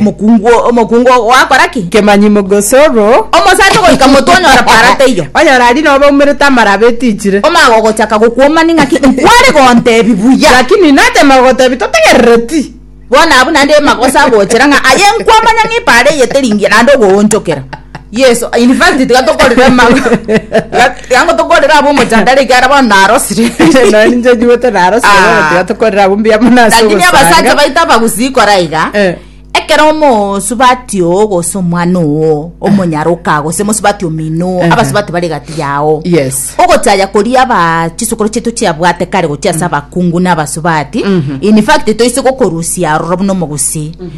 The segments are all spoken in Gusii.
Omokungu omokungu ogakora ki? Kemanyi mogosoro. Omosani ogoika motwe onyora para taiyo. Onyora aria nobe oumerete amarabe etichire. Omage ogochaka gokuomani ng'aki nkware gontebi buya. Lakini natema gogotebi totegerere ti. Bono abwo naende magoso agochera ng'a aye nkwamanya ng'a ipara eye teri ngiya naende ogoonchokera. Yeso, in fact tiga tokorere amago. Tiga- Tiga ngo tokorere abo omochandare ikiara bono narosire. Noe ninche nyiwete narosire Ah. bono tiga tokorere abwo mbuya mono ase Lakini abasacha ogosanga. baito abagusii kora iga. Eh. Ekero omosubati oo gose omwana oo omonyaroka gose mosubati omino oo Ehe. abasubati bare gati yao. Yes. ogochaya koria aba chisokoro chaitu chiabwate kare gochia ase abakungu na abasubati in fact toise gokorusia aroro buna omogusii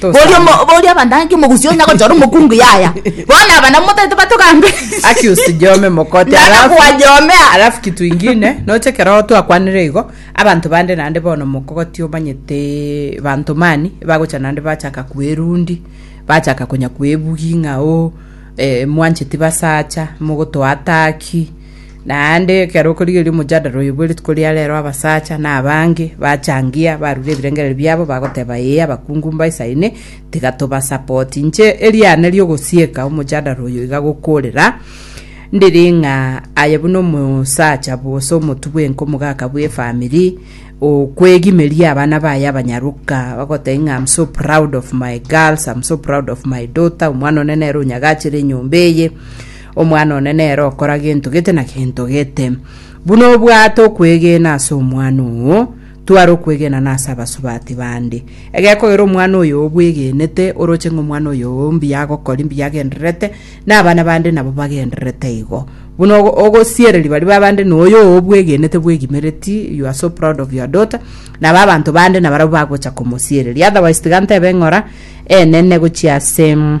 Boria omo- Tosame. boria abantangi omogusi onya gochora omokungu yaya bono aba nabo motaete batogambe Accused Jome Mokote Nana alafu- kwajomea. alafu kitu ingine noche keroo twakwanire igo abanto bande naende bono mokogoti omanyete banto mani bagocha naende bachaka kwerundi bachaka konya kwebugi ng'a o eh, mwancheti basacha mogotoa ataki Naende ekero okorigereria omojadara oyo bwe rituko ria reero abasacha na abange bachangia barure ebirengererio biabo bagoteba ee abakungu mbaisaine tiga tobasapoti. Inche eriane ri'ogosieka omojadara oyo iga gokoorera ndire ng'a aye buna omosacha gose omotwe bwenka omogaka bw'efamiri okwegimeria abana baye abanyaroka bagotebia ng'a am so proud of my girls, am so proud of my daughter, omwana one nere onyagachere enyomba eye Omwana one nere okora gento gete na gento gete. Buna obwate okwegena ase omwana oo, tware okwegena na ase abasubati bande. Egekogera omwana oyo obwegenete, oroche ng'a omwana oyo mbuya agokori, mbuya agendererete, na abana bande nabo bagendererete igo. Buna ogo- ogosiereria baria babande na oyo obwegenete bwegimereti, you are so proud of your daughter, nabo abanto bande nabarabwo bagocha komosiereria. Otherwise tiga ntebe ng'ora enene gochia ase mm,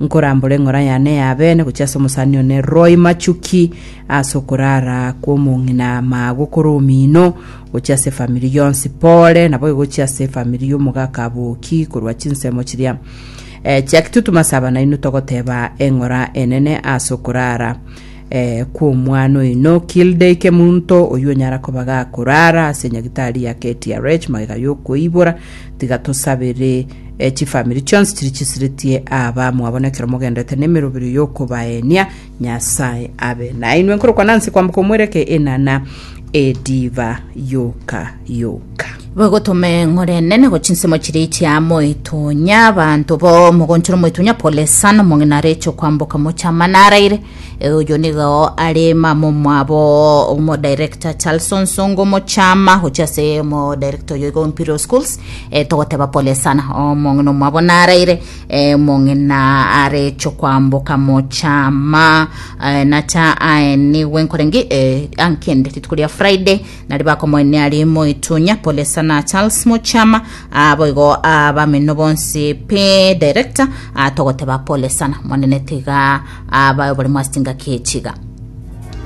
nkorambore eng'ora yane y'abeene gochia ase omosani one Roy Machuki ase okorara kw'omong'ina maa gokora omino gochia ase efamiri yonsi pore nabo egochia ase efamiri y'omogaka Aboki korwa chinsemo chiria eh, chia kitutuma ase abana inwe togoteba eng'ora enene ase okorara Ee, kw'omwana oino, Kilde ike monto oyio onyara koba gakorara ase nyagitari ya KTRH magega y'okoibora, tiga tosabere e, chifamiri chionsi chiri chisiretie aba mwabo nekero mogendete nemeroberio y'okobaenia Nyasae abe nainwe. Nkorokwa Nancy kwamboka omwereke enana ediva yoka yoka. Bagotome ng'ore enene gochia nsemo chiria echia moetunya, abanto bao mogonchore moetunya pole sana, omong'ina areche kwamboka mochama naraire. E, oyo nigo are mama omwabo omodirector Charlson Songo mochama gochia ase omodirector oyo igo Imperial Schools. E, togoteba pole sana omong'ina omwabo naraire, e, omong'ina areche kwamboka mochama e, nacha aenigwe nkoreng'i e, ankende rituko ria Friday Nario bakomoenia rimo Itunya, Polesa na Charles Mochama, aa boigo aa bamino bonsi pe director, aa togoteba Polesa na mwanene tiga aa bae oborimo ase chingaki echiga.